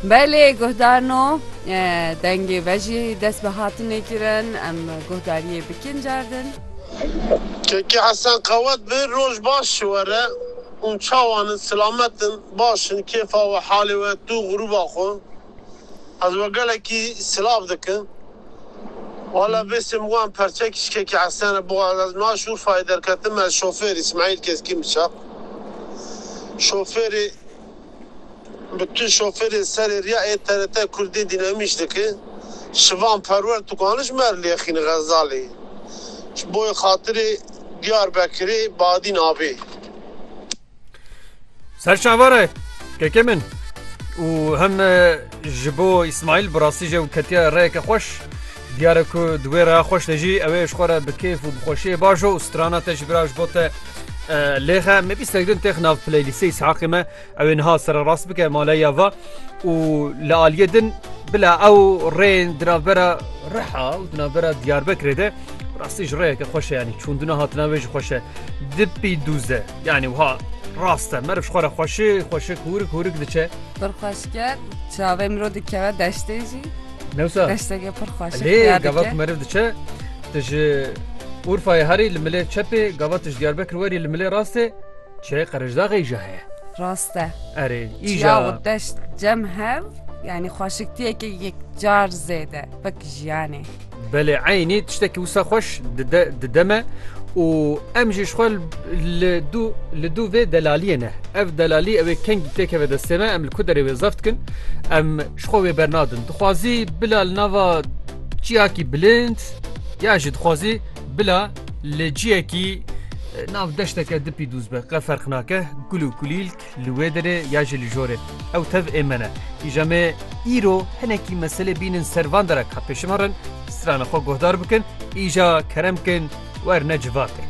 Belê guhdarno dengê ve jî dest bi hatinê kirin em guhdariyê bikin cardin. Kekê Hesen qewet bi, roj baş ji we re û çawan in silamet in, baş in, kêfa we, halê we, tu, grûba xwe. Ez we gelekî silav dikim. Wala vê sêm wan perçek îşkekî Hesene bo ez ez niha Şûrfayê derketim ez şofêr Îsmaîl Keskîn bi çap şofêrê bi tu şofêrê serê riya ê TRT Kurdî dînamîş diki Şivan Perwer tu kani ji me re lêxînî Xezalê ji bo yê xatirê Diyarbekirê Badîn avê. Ser şavara keke min û hem ji bo İsmail bi rastî jê û ketiya reyeke xweş diyare ku di wê reya xweş de jî ew ê ji xwe re bi kêf û bi xweşiyê baş o û strana te jî bira ji bo te lêxe me bîstek din têx nav playlîstê İshaqê me ew ê niha sererast bike maleya va û li aliyê din bila ew rêyên di navbera Riha û di navbera Diyarbekirê de Rastî ji rêyeke xweşe yanî çûndina hatina wê ji xweşe dipî dûze yanî wiha rast e meriv xwe re xweşi xweşik hûrik hûrik diçe pir xweşke çavê miro dikeve deştê jî newsa deşteke pir xweş lê gava ku meriv diçe tu ji Urfayê herî li milê çepê gava tu ji Diyarbekir werî li milê rastê çiyayê qerejdaxê jî heye rast e erê îja deşt cem hev yanî xweşiktiyeke yekcar zêde wek jiyanê Belê eynî tiştekî wisa xweş dide dide me û em jî ji xwe li dû li dû vê delaliyê ne. Ev delalî ew ê kengî tê keve destê me em li ku derê wê zaf dikin em ji xwe wê bernadin. Dixwazî bila li nava ciyakî bilind ya jî dixwazî bila li ciyekî nav deşteke dipî dûz be qe ferq nake gul û kulîlk Li wê derê ya jî li jorê. Ew tev ê me ne. Îja me îro hinekî meselê bînin ser van derak ka pêşî me rin, strana xwe guhdar bikin, îja kerem bikin, werne civatin.